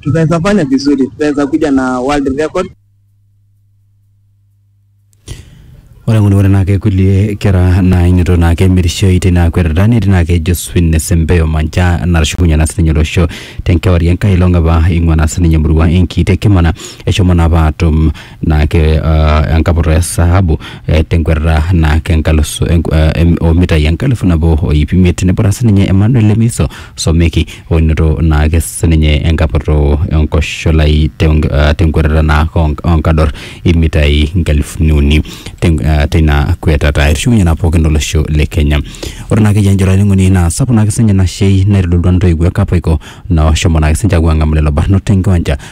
tunaweza fanya vizuri, tunaweza kuja na world record. ore ng'uni ore naake kulie kera nainito naake emirishoi tina kwetata netii naake Josephine Sembeyo Manja natushukunye naa sininye olosho tenkewarie enkai olong apa ing'ua naa sininye emurua enkiti Kimana eshomo naa apa atum naake uh, enkaputa e sahabu eh, tenkwetata naake enkalusu enk- eh, em- omitai enkalifu nabo o iip imiet neputa sininye Emmanuel Lemiso Someki oinoto naake sininye enkaputu enkosholai tenk- eh, tenkwetata naake onk- onkador imitai nkalifuni uni ten- eh, teina kwetata etushukunye naa pookin olosho le Kenya ore naake iyie enjoro olainining'oni naa sapuk naake sininye ina shei naitodolua ntoiwuo e Kapaiko naoshomo naake sininche aapuo aang'amu lelo barnot tenkiwanja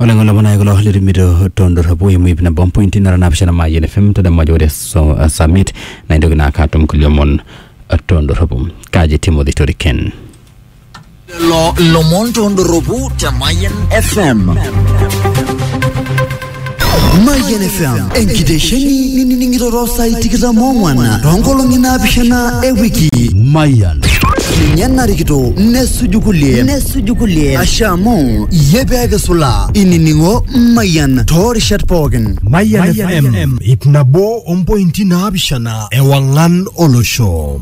ore ng'ole manae kulo litumito tondorropu eimu ip nabo mpointi nara naapishana Mayian FM tadamu ajo ore so- uh, summit naa intoki naa ake atum kulie omon uh, tondorropu kaji Timothy Toriken lelo lomon tondorropu te Mayian FM. Mayian FM enkitesheni nining'iroro saai tikitam ong'wan toonkolong'i naapishana e wiki. Mayian. Ninye narikito nesuju kulie nesuju kulie asha amu iyie pee kisula inining'o Mayian toorishat pookin. Mayian FM ip nabo ompointi naapishana ewang'an olosho.